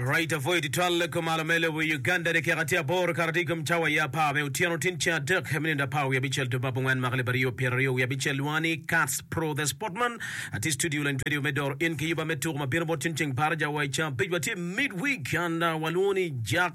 Right avoid twal kom malo me lobo i Uganda de keka tye aboro kara tye kom cawa ya apar me otyeno tin ceng adek me nindo apar wiye abicel to bap angwen maka libario pyero aryo wiye abicel lwonga ni Kats Pro The Sportman atye studio lany twedio me doro in ki yuba me tuko ma bino bot tin ceng par jawa i ceng abic watye midweek and uh, walwongo ni Jack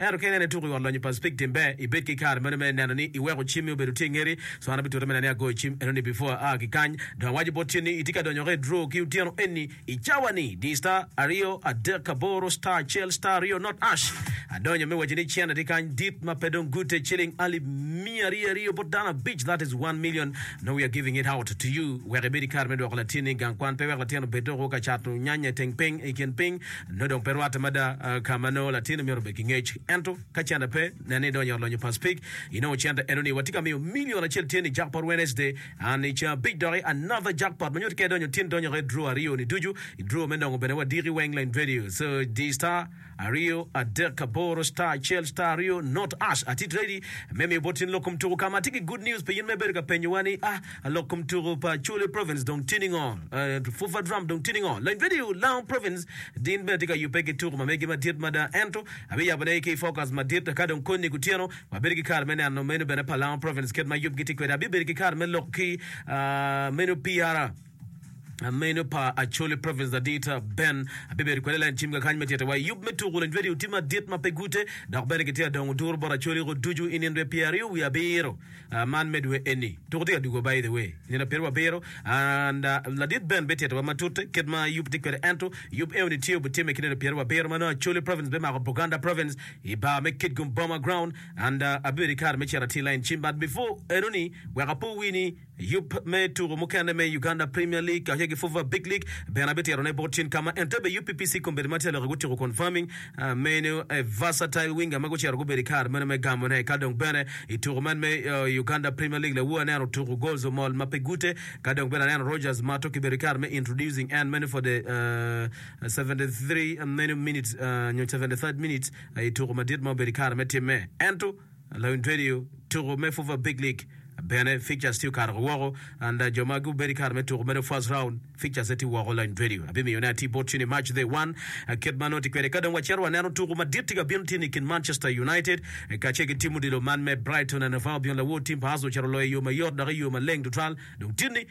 Ento ka ineno ituko i ot lonyo pa Speke tim ber ibed ki kare meno me neno ni iweko cimmi obedo tye i ngeti. Cwara bitute mena ni agoyo cim enoni before aa ki kany dong awaco bot cen ni itye ka donyoka i draw ki otyeno eni i cawa ni di star aryo adek aboro star acel star aryo not ash adonyo me waco ni cen atye kany dit ma pe dong gute ciling alip miya aryo aryo bot dano abic that is one million now we are giving it out to you wek ibed ki kare me dwoko latinni gang kwan pe wek latin obed dok woko ka cato nyanya i teng piny i kin piny Nongo dong pe rwatte mada ka ma nongo latin omyero obed ki ngec. Ento, ka cente pe, nen ni idonyo i ot lonyo Pacific, inongo cente eno ni watye ka miyo milion acel tyen i Jackpot Wednesday, an i ca abic doki another jackpot ma nyuto ka idonyo tin donyo i draw aryo ni ducu, i draw me nongo bene wadiki weng lane radio so diyo star aryo adek aboro star acel star aryo not ash ati ready me miyo bot in lok kom tuku ka ma atye ki good news pi in ma ibedo ka penyowa ni ah Alok kom tuku pa Acholi Province dong tye ningo? Fufa Drum dong tye ningo? Lony Vedio Lango Province din bene tye ka yubbe ki tuku ma megi madit mada ento abiyabo ne ki focus madit ka dong koni kutyeno wabedo ki kare me neno menu bene pa Lango Province kit ma yubgi tye kwede. Abibedo ki kare me lok ki menu PR menu pa Acholi Province ladit Ben abibedo kwede len cim kakany me tyete wa i yub me tuku. Lony Vedio tye madit ma pe gute dok bene kitye adongo duru bot Acholi ko ducu i nino dwe pyeraryo wiye abiro. Man me dwe eni, tuko tye ka dwogo by the way, nino pire wabiro and ladit Ben bitito wa matut kit ma yub tye kwede ento yub eo ni tye obitimme ki nino pire wabiro manongo Acholi province bimako Buganda province i bar me Kitgum Boma ground and abibedo ki kare me cito atir line cim but before enoni wek apo wi ni yub me tuko mukene me Uganda Premier League kacel ki Fufa Big League bene abitito ne bot cen kama Entebbe UPPC Kombeddi ma tye ka lok i Utiko confirming Meno aye versatile winger ma gucito gubedo i kare meno me gamone. Ka dong bene i tuku man me Uganda Premier League lawu aneno otuku goals omol ma pe gute. Ka dong bene aneno Rogers Mato kibedo i kare me introducing en meno for the seventy three meno minute nyo seventy third minute i tuku madit ma obedo i kare me timme. Ento. Lawiny Radio, Tuku me Fufa Big League bene fixtures tye okato ki woko and jo ma gubedo ki kare me tuku mere first round fixtures ne tye woko. Lawiny Radio abimiyo ne atir bot cene i March the one kit ma nongo tye kwede. Ka dong wacito waneno tuku madit tye ka bino tye ni kin Manchester United kacel ki tim odilo man me Brighton and Hove Albion. Lawor tim pa Arsenal ocito oloyo i yo mayot dok i yo maleng tutwal dong tye ni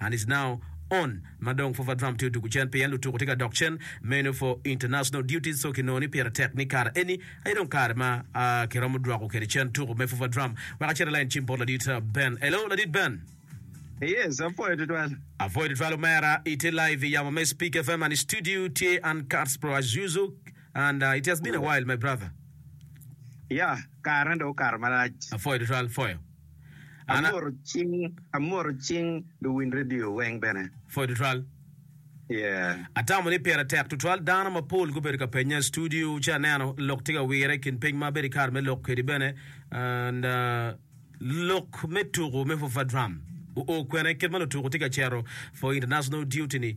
And is now on ma dong for Vadram tye odugu cen pien lutuku tye ka dok cen meno for international duties so kinongo ni pire tek ni kare eni aye dong kare ma ki romo dwoko kede cen tuku me for Vadram wek acit alain cim bot ladit Ben. Hello ladit Ben. Yes, apwoyo tutwal. Apwoyo tutwal omera, itye live i yamo me Speak FM and studio tye Uncuts Pro as usual and uh, it has been a while my brother. Yeah, kare dong okato malac. Apwoyo tutwal, pwoyo. Amwoto cing luwiny redio weng bene. Pwoyo tutwal. Atamo ni pire tek tutwal. Dano mapol gubedo ka penya i studio ci aneno lok tye ka wire i kin piny ma abedo i kare me lok kwedi bene. Lok me tuko me Fufadram oo kwene kit ma lutuko tye ka cito for international duty-ni?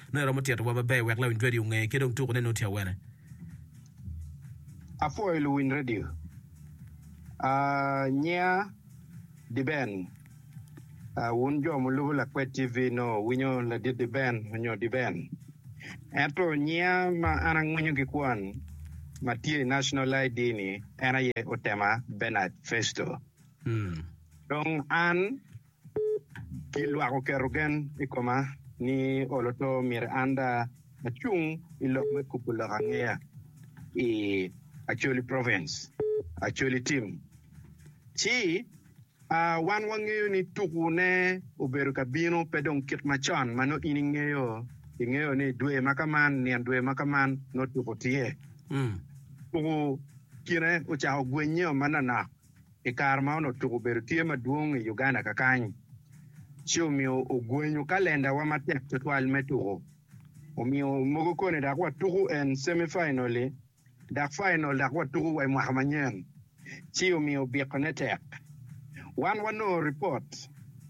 Nongo iromo tito wa maber wek lawiny radio onge ki dong tuku ne nongo tye awene. Apwoyo luwiny radio. Aah nyinga Diben. Wun jo mulubo Lakwed TV nongo wuwinyo Ladit Diben nyo Diben. Ento nyinga ma an angwinyo ki kwon ma tye i National ID ni en aye Otema Bernard Festo. Dong an. Ki lwak oketo gen i koma ni olo to myero an da acung i lok me kubo lok angeya i Acholi Province, Acholi Tim. Ci, aa, wan wangeyo ni tuku ne obedo ka bino pe dong kit ma con ma nongo in ingeyo, ingeyo ni dwe ma ka man, nyen dwe ma ka man nongo tuku tye. Tuku kine ocako gwenyo manonok. I kare ma onongo tuko obedo tye madwong i Uganda kakany, ci omiyo ogwenyo kalendawa matek tutwal me tuko. Omiyo mogo koni dok watuko en semi fainol-li dok fainol dok watuko wa i mwaka manyen, ci omiyo bikone tek. Wan wanongo ripot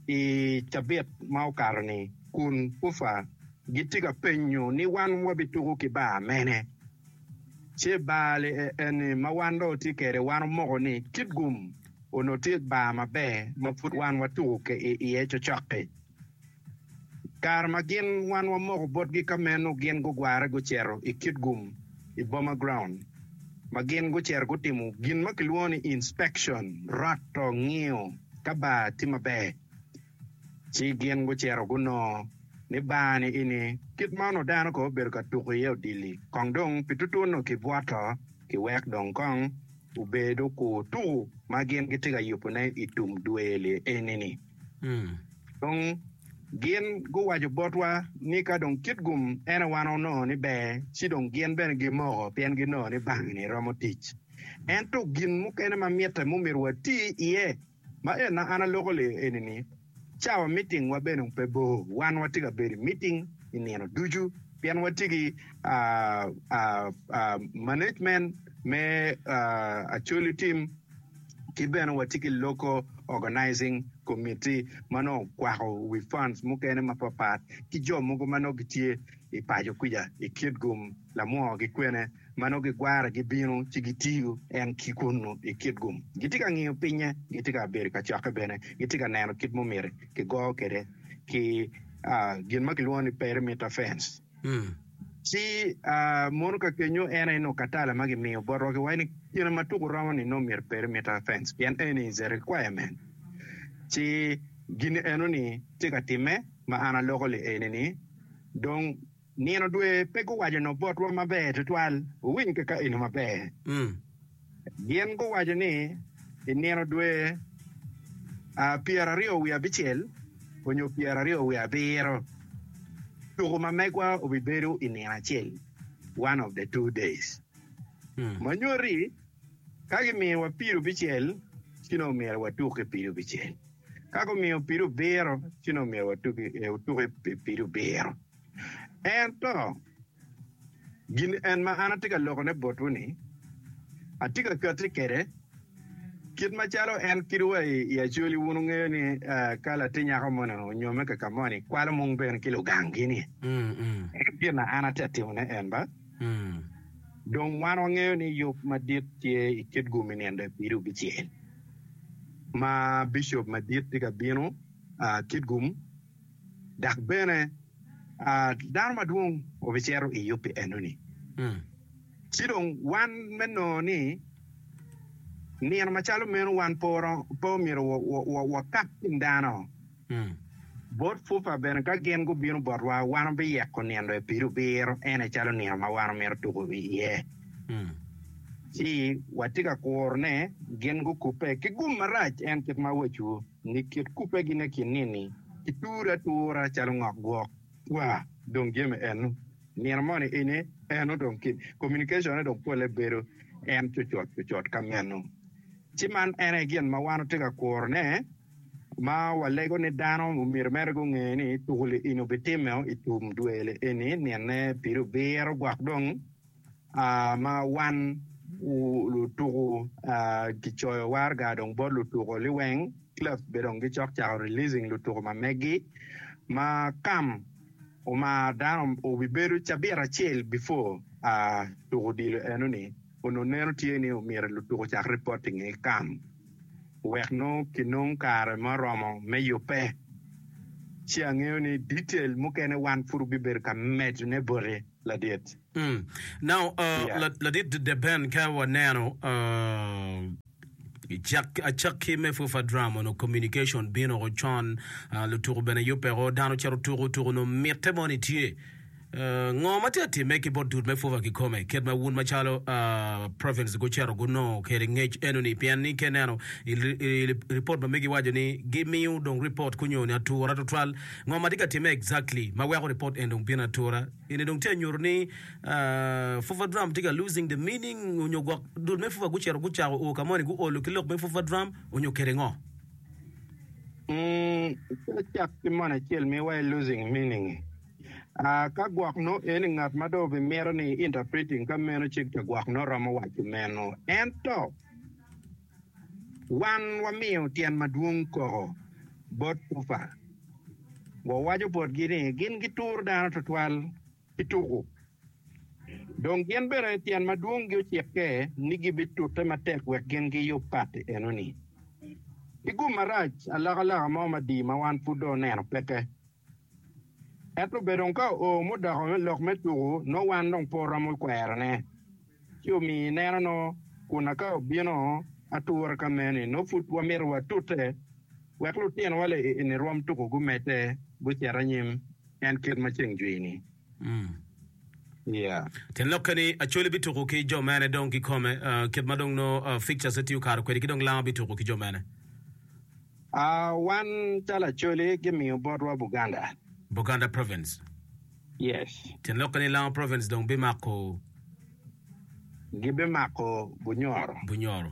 i cabit ma okato-ni kun Ufa gitye ka penyo ni wan wabituko ki bar mene. Ce bar li e enni ma wan dong watye kede wan omoko ni kit gum onongo tye bar maber ma pud wan watuku ke i iye cocok-ki. Kare ma gin wan wamoko botgi ka meno gin gugware guceto i kit gum i boma ground ma gin guceto gutimo gin ma kilwongo ni inspection, roto, ngiyo ka bar tye maber. Ci gin gucito gunongo ni bar-ni ini kit ma onongo dano kong obedo ka tuko iye odilli, kong dong pi tutwu onongo kibwoto ki wek dong kong obed okur tuku ma gin gitye ka yubone i tum dwe-li eni-ni. Dong gin guwaco botwa ni ka dong kit gum ene wan onongo ni ber, ci dong gin bene gimoko pien ginongo ni bar-ni romo tic. Ento gin mukene ma mitte mumito wati iye. Ma en ma an aloko le eni ni, cawa miting wa bene pe bor, wan watye ka bedo i miting i nino ducu pien watye ki management me Acholi team ki bene watye ki local organizing committee ma nongo okwako wi funds mukene mapapat ki jo mogo ma nongo gitye i paco kwica i kit gum lamwongo ki kwene. ma nongo gigwara gibino ci gitiyo en ki kunnu i kit gum. Gitye ka ngiyo pinye, gitye ka bedo i kacokke bene, gitye ka neno kit ma omyero kigo kwede ki gin ma kilwongo ni perimeter fence. Ci mono ka kenyo en aye nongo katala ma gimiyo bot rokiwa ni kine ma tuku romo ni nongo myero perimeter fence pien eni is a requirement. Ci gin eno ni tye ka timme ma an aloko li eni ni dong. Nino dwe pe guwaco nongo botwa maber twatwal, wuwiny ki ka eno maber. Gin guwaco ni, I nino dwe pyeraryo wiye abicel onyo pyeraryo wiye abiro, tuku ma megwa obibedo i nino acel, one of the two days. Ma nyoti, ka gimiyowa pido bicel, ci nongo myero watuk ki pido bicel. Ka gumiyo pido biro, ci nongo myero watuk ki pido biro. Ento, gin en ma an atye ka lokone botwu-ni, atye ka katti kwede, kit macalo en kido wa i acoli. Wun wungeyo ni ka latir nyako moni onyome ka ka moni, kwalo mung bene ki lugangi-ni. Ento gin na an atye ka timone en ba, dong wan wangeyo ni yub madit tye i kit gum i nino lapido bicel ma bicop madit tye ka bino, kit gum. Dok bene, dano madwong obicito i yub pi enoni. Ci dong wan me nongo ni nino macalo meno wan pe omyero wakak kin dano bot pupa bene ka gin gubino botwa, wan wabiyeko nino i pido biro, en aye calo nino ma wan wamito tuko iye. Ci watye ka kuro ne gin gukubbe ki gum marac, en kit ma awacu. Ni kit kubegine ki nini? Iture atura calo ngok gwok kwa dong jami enu nino moni ini enu dong ki communication ne dong pole bedo en cucut cucut ka menu. Ci man en aye gin ma wan watye ka kuro ne ma walego ni dano omyero mere gunge ni tukuli ini obitime o itum dwele eni nine pire obiro gwok dong. ma wan lutuku kicoyo waraga dong bot lutuku liweng, clubs bene dong gicok cako releasing lutuku ma meggi ma kam omar dano obibedo cabit acel before tuku odilo eno ni onongo neno tye ni omyero lutuku ocak reporting i kam wek nongo kinong kare ma oromo me yubbe ci angeyo ni detail mukene wan pud obibedo ka medone boti. ladit. Mm. Now, uh, Yeah. la- ladit Dede Ben, ka waneno uh, cak- acakki me FUFA drama onongo communication bino ko con, uh, lutuku bene yubeko, dano cito tuku, tuku onongo mitte moni tye. Uh, ngo ma tye timme ki bot dut me FUFA kikome, kit ma wun macalo uh, province gucito gunongo kede ngec enoni, pien ni ke neno i, i, i report ma megi waco ni gimiyo dong report kunyo ni atura tutwal Ngo ma tye ka timme exactly ma weko report en dong bino atura? Eni dong tye anyutu ni fufa drum tye ka losing the meaning onyo gwok dul me fufa gucito gucako o ka moni guolo ki lok me fufa drum onyo kede ngo? Pe icak ki moni acel mi wa i losing meaning i. Ka gwok no eni ngat ma dong obi mito ni interpreting ka meno cik ta gwok no romo waco meno. Ento. Wan wamiyo tyen madwong koko bot Kufa. Wawaco botgi ni gin gituro dano twatwal pi tuku. Dong gin bene tyen madwong-gi ocikke ni gibitute matek wek gin giyub pati eno-ni. Pi gum marac, alokaloka mo madii ma wan pud dong oneno peke Ento bed dong ka oo mudoko me lok me tuku nongo wan dong pe oromo kwerone. Ci omiyo i neno nongo kun aka obino atura ka meni nongo pud wamito watute wek lutinowa leni rwom tuku gumedde gucit anyim en kit ma ceng jwini. Tyen lok keni, Acholi bituku ki jo mene dong kikome? Kit ma dong nongo Fixtures ne tiyo kare kwedi ki dong Langa bituku ki jo mene? Wan calo Acholi gimiyo botwa Buganda. Buganda Province. Yes. Tyen lok keni, Langa Province dong bimako? Gibimako Bunyoro. Bunyoro.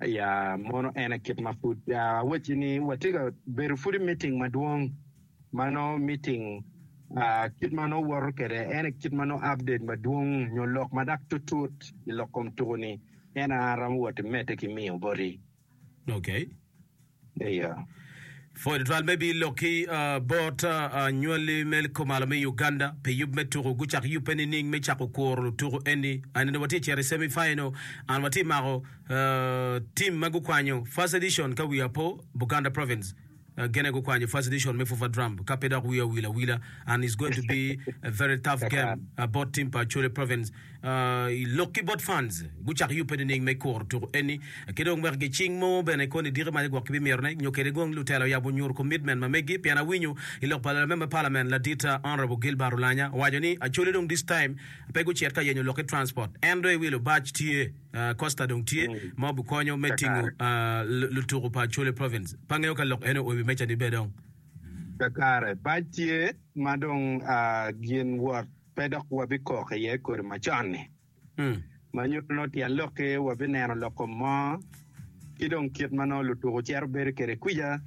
Aya, mono en aye kit ma pud awacci ni watye ka bedo pud i miting madwong ma nongo miting kit ma nongo woto kwede ene kit ma nongo update madwong nyo lok ma dok tutut i lok kom tuku-ni ene an aromo wot i medde ki miyo boti. Okay. Iya. Pwod tutwal me bii lok ki bot anywali me kumalo me Uganda pi yub me tuku. Gucak yubbe nining me cako kuro lutuku eni? Anene watye cito i semi final and watye mako team ma gukwanyo first edition ka wiya po Buganda province gene gukwanyo first edition me Fufa Drum ka pe dok wiya owil awila and is going to be a very tough game bot team pa Acholi province. I lok ki bot Funds, gucako yubbe nining me kuro tuku eni? Ki dong wek gicing mo bene koni diki ma gwok gibimito ne nyo kede gong lutela oyabo onyur commitment ma megi pien awinyo I lok pa Lamember Parliament ladit Honourable Gilbert Olanya owaco ni Acholi dong this time pe gucit ka yenyo lok ki transport en dong iwi lubac tye Costa dong tye ma obikonyo me tingo lutuku pa Acholi Province pe angeyo ka lok eno oiwi meca ni be dong. Kakare, bac tye ma dong gin wot. pe dok wabikok iye kodi macon-ni, ma nyuto nongo tyen lokki, wabineno lok kom mo, ki dong kit ma nongo lutuku cito bedo kwede kwica,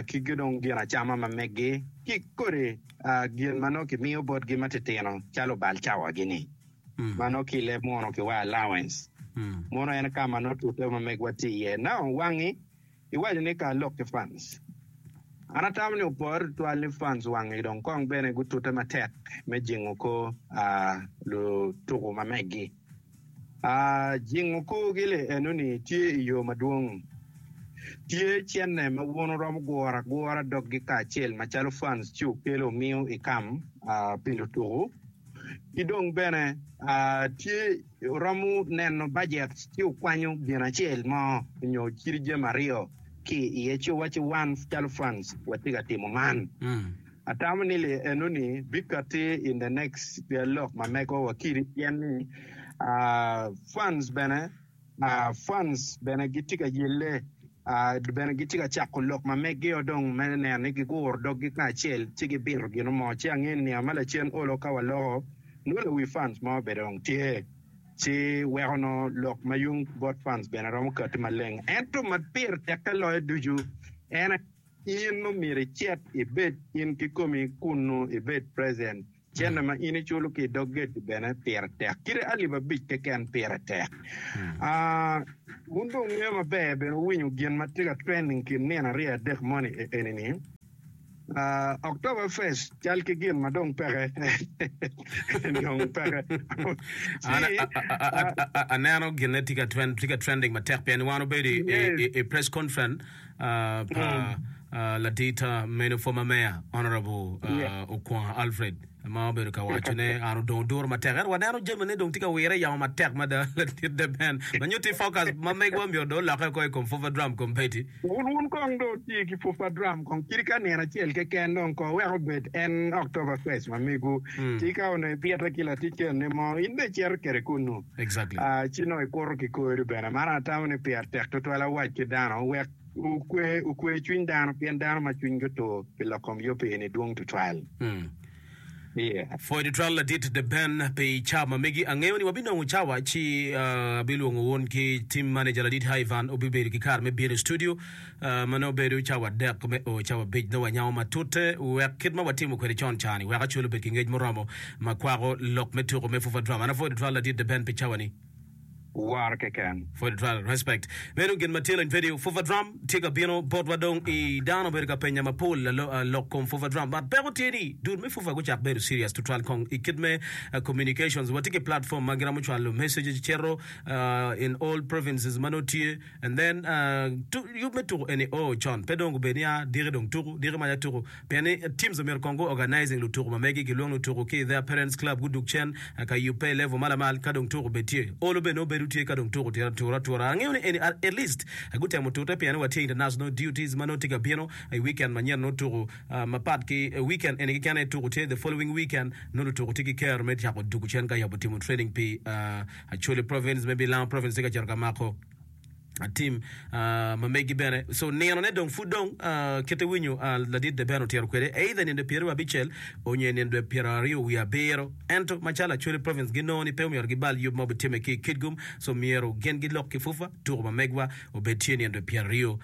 ki dong gin acama ma meggi, ki kodi gin ma nongo kimiyo botgi ma titino calo bal cawagi-ni, ma nongo ki i leb muno kiwayo allowance. Muno en ka ma nongo tute ma megwa tye iye. Now, wangi Iwaco ni kar lok ki fans. An atamo ni opore tutwal ni fans wangi dong kong bene gutute matek me jingo kor lutuku ma megi. Jingo korgi li enoni tye i yo madwong. Tye cente ma wun wuromo guro agura doggi kacel macalo fans ci wukelo wumiyo ikam pi lutuku ki dong bene tye Wuromo neno bajet ci wukwanyo gin acel mo nyo ciri jami aryo ki iye ci wuwacci wan calo Franz watye ka timo man. Atamo ni lee enoni bikati in the next lok ma mego wa kiri pien ni Franz bene Franz bene gitye ka yelle. Bene gitye ka cako lok ma meggio dong me neno ni giguro doggi kacel ci gibito gino mo. Ci angeyo ni niang ma lacen olo ka waloko nongo lawi fans mo bene dong tye, ci weko nongo lok ma yung bot fans bene romo kati maleng. Ento ma pire tekke loyo ducu en aye in nongo myero icit ibed in kikomi kunnu ibed present. Cente ma in iculo ki i dog geti bene pire tek kite alip abic keken pire tek. Wun dong wungeyo maber bene, wuwinyo gin ma tye ka trending kin nino aryo adek moni enini, October Fest cal ki gin ma dong peke dong peke. An aneno ginne tye ka trending matek pien wan obedo i press conference pa ladita meno former mayor honourable Okwongo Alfred ma obedo ka waco ne an odong oduro matek ento waneno jami ne dong tye ka wire yamo matek mada ladit deben ma nyutti focus ma megwa myero do olokke oko i kom fufa drum kong bedi wun wun kong do tye ki fufa drum kong kiri ka nino acel keken dong ko wek obed en October first ma megu tika onongo ibite ki latic kene mo in be icito kede kunu ci nongo ikuto ki kori bene. Man atamo ni pire tek tutwal awac ki dano wek okwe okwe cwiny dano pien dano ma cwinygi otur pi lok kom yub pi eni dwong tutwal. Yeah. Pwoyo tutwal ladit The Ben pi cawa ma megi. Angeyo ni wabinongo cawa ci abilwongo wun ki Team Manager ladit Ivan obibedo ki kare me bino i studio. ma nongo bedo cawa adek me o cawa abic, nongo wanyango matute wek kit ma watimo kwede con cani wek Acholi obed ki ngec muromo ma kwako lok me tuko me Fufa Drama. An a Foddy Twal, ladit The Ben pi cawa ni. War keken. Foddy Twal, Respect. Meno gin ma tye lony video. Fufa Drum tye ka bino botwa dong i dano obedo ka penya mapol lok kom Fufa Drum but peko tye ni dul me Fufa gucak bedo serious tutwal kong i kit me communications. Watye ki platform ma giromo cwalo messages cito in all provinces ma nongo tye And then uh yub me tuku eni oo con pe dong gubed nia diki dong tuku diki maca tuku pien ni teams omyero kong gu organizing lutuku ma megi gilwong ni otuku ki their parents club gudug cen ka yub pe i level ma lamal ka dong tuku bed tye olo bene nongo bedo tye ka dong tuku tye atura atura angeyo ni eni at least gutemo tute pien ni wa tye international duties ma nongo tye ka bino i weekend manyen nongo tuku ma pat ki weekend eni keken aye tuku tye the following weekend nongo lutuku tye ki ker me cako dugu cen ka yabo timo training pi uh Acholi province me Bilango province tye ka cito ka mako tim ma megi bene so nino ne dong pud dong kite winyo ladit de bene otito kwede either nindo pyeraryo abicel onyo i nindo pyeraryo wiye abiro ento macalo Acholi province ginongo ni pe omyero gibal yub ma obitime ki i Kitgum so myero gin gilok ki fufa tuko ma megwa obed tye nindo pyeraryo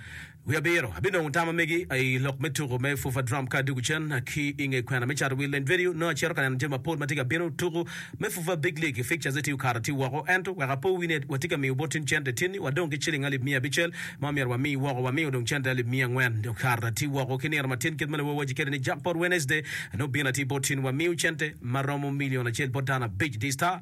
Wiye abiro, abinongo tam amegi i lok me tuku me Fufa Drum ka adwogo cen ki i nge kwena. Me cato wi leny vedio, nongo acito ka neno jami mapol ma tye ka bino. Tuku me Fufa Big League i Fixtures-ze tye okato atir woko, ento wek apo wi ne, watye ka miyo bot in cente tin-ni, wadong ki ciling alip miya abicel ma omyero wami woko. Wamiyo dong cente alip miya angwen. Okato atir woko ki nino matin kit ma nongo wawaci kwede ni Jackpot Wednesday, nongo bino atir bot in. Wamiyo cente ma romo milion acel bot dano abic. The Star.